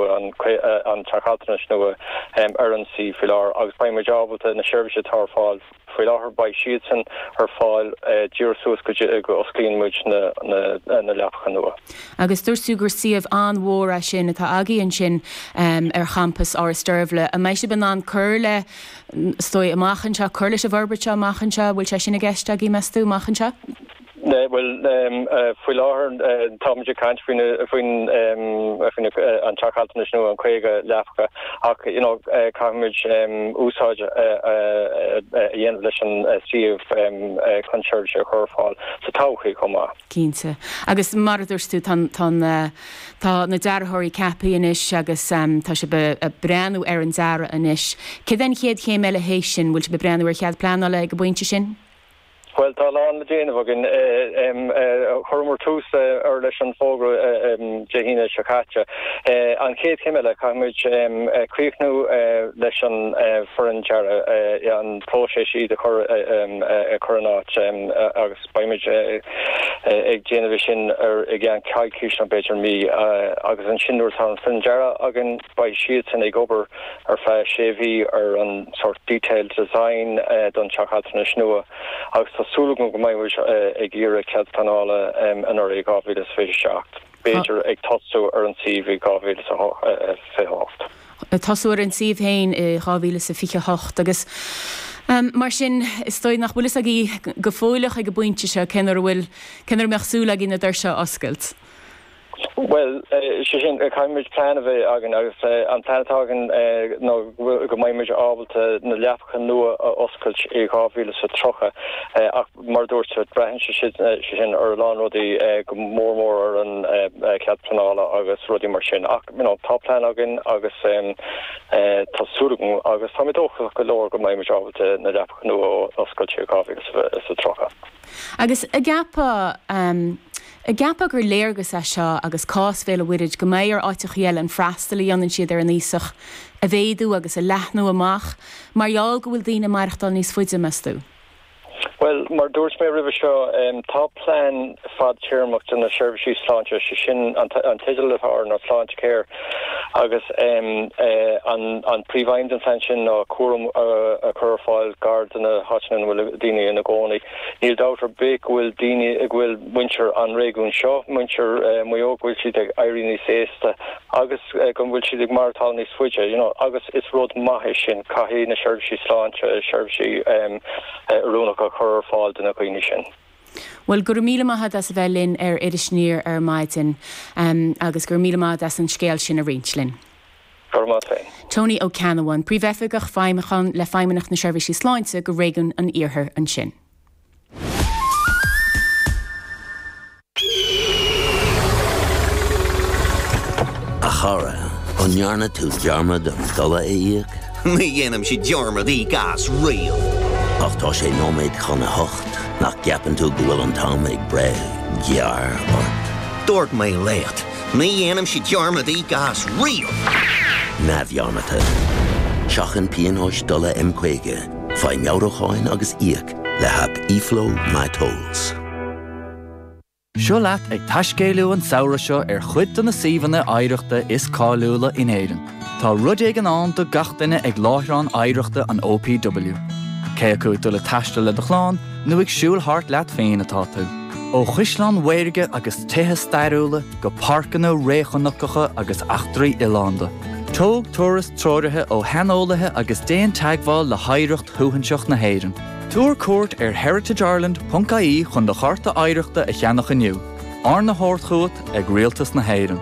an Teach Altranais nua ar an suíomh faoi láthair agus beidh muid ábalta na seirbhísí atá ar fáil faoi láthair, beidh siadsan ar fáil díreach suas go dtí go osclaíonn muid na leapacha nua. Agus dúirt tú gur suíomh an-mhór é sin atá agaibh ansin ar champas Áras Deirbhle. An mbeidh sibh in ann cur le, is dóigh, amach anseo, cur leis an bhforbairt seo amach anseo, an bhfuil sé sin i gceist agaibh, meas tú, amach anseo? Bhuel, faoi láthair, táimid ag caint faoin an Teach Altranais nua, an 50 leapacha, ach you know caithfimid úsáid a dhéanamh leis an suíomh chun seirbhísí a chur ar fáil sa todhchaí chomh maith. Cinnte. Agus mar a dúirt tú, tá an, tá an eh, tá na dearthóirí ceaptha anois agus em tá sibh ag breathnú ar an dearadh anois. Cad é an chéad chéim eile théis sin, bhfuil sibh ag breathnú ar chead pleanála ag an bpointe sin? Bhuel, tá a lán le déanamh againn. Chuireamar tús leis an bhfógra Dé hAoine seo caite. An chéad chéim eile, caithfimid críochnú leis an bhfoireann dearaidh, an próiseas iad a chur in áit, agus beimid ag déanamh é sin i gceann coicíse nó b'fhéidir mí. Agus ansin nuair atá an foireann dearaidh againn, Beidh siadsan ag obair ar feadh sé mhí ar an sórt 'detailed design' don Teach Altranais nua agus tá súil agam go mbeidh muid ag iarraidh cead pleanála anuraidh 2027, b'fhéidir ag tosú ar an suíomh i 2028. ag tosú ar an suíomh féin i 2028 agus mar sin is dóigh nach bhfuil fhios agaibh go fóilleach ag an bpointe seo cén uair a bhfuil, cén uair a mbeadh súil agaibh na doirse a oscailt. Bhuel, sé sin, caithfidh muid plean a bheith againn agus an plean atá againn ná go mbeidh muid ábalta na leapacha nua a oscailt i 2030 ach mar a dúirt tú, braitheann sé sin ar a lán rudaí, go mór mór ar an chead pleanála agus rudaí mar sin ach you know tá plean againn agus tá súil agam agus tá mé dóchasach go leor go mbeidh muid ábalta na leapacha nua a oscailt i 2030. Agus an gceapfá, An gceapfá gur léargas é seo agus cás Bhéal a' Mhuirthid go mbeidh ar áiteachaí eile an freastal a dhéanann siad ar na haosaigh a mhéadú agus a leathnú amach mar gheall go bhfuil daoine ag maireachtáil níos faide, meas tú? Bhuel, mar dúirt mé roimhe seo, tá plean fadtéarmach do na seirbhísí sláinte, sé sin an teideal atá air ná Sláintecare agus an príomhaidhm den phlean sin ná cúram a chur ar fáil gar do na háiteanna ina bhfuil daoine ina gcónaí. Níl dabht ar bith go bhfuil daoine, go bhfuil muintir an réigiúin seo, muintir Mhaigh Eo, go bhfuil siad ag éirí níos aosta agus go bhfuil siad ag maireachtáil níos faide, you know, agus is rud maith é sin. Caithfidh na seirbhísí sláinte seirbhísí oiriúnacha a chur ar fáil do na dhaoine sin. Bhuel, go raibh míle maith a'd as a bheith linn ar Iris Aniar ar maidin, agus go raibh míle maith a'd as an scéal sin a roinnt linn. Tony Ó Ceannabháin, Príomhoifigeach Feidhmiúcháin le Feidhmeannacht na Seirbhísí Sláinte do Réigiún an Iarthair ansin. A chara, an ndearna tú dearmad an dola a íoc? Ní dhéanaimse dearmad íoc as, riamh! Ach tá sé nóiméad chun a hocht, nach gceapann tú go bhfuil an t-am ag breith gearr ort? Dúirt mé leat! Ní dhéanaimse dearmad íoc as, riamh! neamhdhearmadta. Seachain pionóis dola M50, faigh meabhrúcháin agus íoc le haip eFlow My Tolls. Seo leat ag taiscéaladh an samhradh seo ar chuid de na suíomhanna oidhreachta is cáiliúla in Éirinn. Tá rud éigin ann do gach duine ag láithreáin oidhreachta an OPW. Cé acu ag dul ag taisteal le do chlann nó ag siúl thart leat féin atá tú, ó chaisleáin mhaorga agus tithe stairiúla go páirceanna réchnocacha agus eachtraí oileánda, tóg turas treoraithe ó shaineolaithe agus déan teagmháil le hoidhreacht shuaithinseach na hÉireann. Tabhair cuairt ar heritageireland.ie chun do chárta oidhreachta a cheannach inniu, arna thabhairt chugat ag Rialtas na hÉireann.